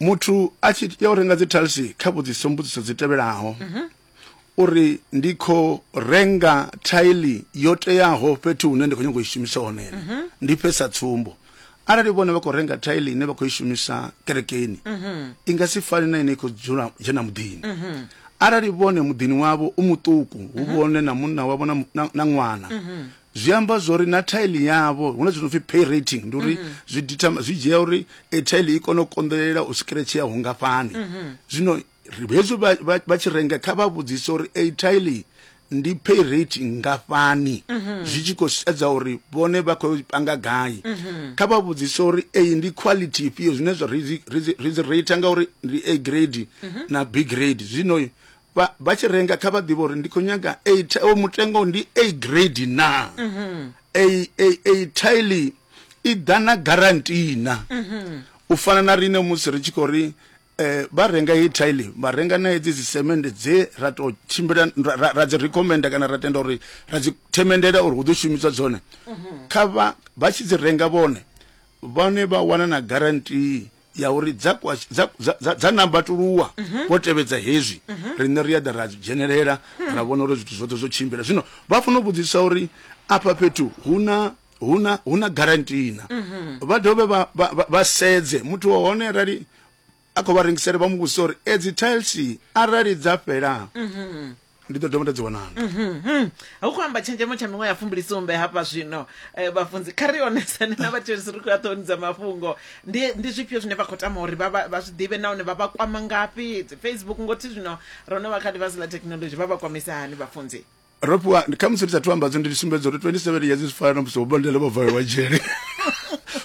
muthu a tshi ya u renga dzi talsi kha vhudziso mbudziso dzi tevhelaho mhm. uri ndi kho renga thaili yo teaho fhethu hune ndi kho nyanga u i shumisa hone mhm. ndi fhesa tsumbo arali vhone vha khou renga thaili ine vha khou i shumisa kerekeni mhm. i nga si fani na ine i khou dzula dzhena muḓini arali vhone muḓini wavho u muṱuku hu vhone na munna wavho na ṅwana zwi amba zwori na tile yavho huna zwino pfi pay rating ndi uri zwi dita zwi dzhia uri e tile i kone u konḓelela u scratch ya hungafhani zwino ri- hezwi vha- vha vha tshi renga kha vha vhudzise uri e tile ndi pay rate ngafhani zwi tshi khou sedza uri vhone vha khou panga gai kha vha vhudzise uri eyi ndi quality ifhio zwine zwa ri dzi- ri dzi- ri dzi rate ngauri ndi a grade na b grade zwino vha vha tshi renga kha vha ḓivhe uri ndi khou nyaga a ti- o mutengo ndi a grade na a a a tile i ḓa na guarantee na u fana na rine musi ri tshi khou ri eh, vha renga hei tile vha renga na hedzi dzisemende dze ra tou tshimbila ra- ra- ra dzi recommenda kana ra tenda uri ra dzi themendela uri hu ḓo shumiswa dzone kha vha vha tshi dzi renga vhone vhone vha wana na guarantee ya uri dza kwashe- dza- dza- dza- dza nambatuluwa vho tevhedza hezwi riṋe ri a ḓa ra dzhenelela ra vhona uri zwithu zwoṱhe zwo tshimbila zwino vha fanela u vhudzisa uri afha fhethu hu na hu na hu na garantina vha dovhe vha- vha vha- vha sedze muthu wa hone arali a khou vha rengisela vha mu vhudzisa uri edzi tiles arali dza fhela ndi ḓo dovha nda dzi wanana Mhm. hu khou amba tshenzhemo tsha miṅwe ya fumbilisumbe hafha zwino eh, vhafunzi kha ri onesane na vhathetshelesi ri khou ya ṱhoni dza mafhungo ndi ndi zwifhio zwine vha khou tama uri vha vha- vha zwi ḓivhe nahone vha vha kwama ngafhi dzi facebook ngothi zwino ro no vha kha ḽifhasi ḽa thekhinolodzhi vha vha kwamisa hani vhafunzi ro fhiwa kha musi ndi sa thu ambadzo ndi sumbedza uri 27 years zwi fana na musi vhobandele vho valelwa dzhele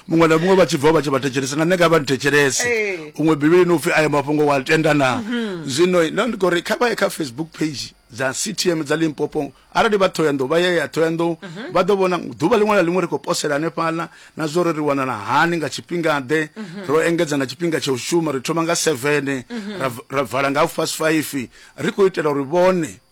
muṅwe na muṅwe vha tshi bva vha tshi vha thetshelesa na nṋe nga vha ndithetshelese Ee. huṅwe bivhilini upfhi ayo mafhungo wa tenda na mhm. zwino no ndi khou ri kha vha ye kha facebook page dza ctm dza limpopo arali vha thoyandou vha ye ya thoyandou mhm. vha ḓo vhona ḓuvha ḽiṅwe na ḽiṅwe ri khou posela hanefhaḽa na zwo ri ri wanala hani nga tshifhinga ḓe mhm. ro engedza na tshifhinga tsha u shuma ri thoma nga seven ra vala nga half past five ri khou itela uri vhone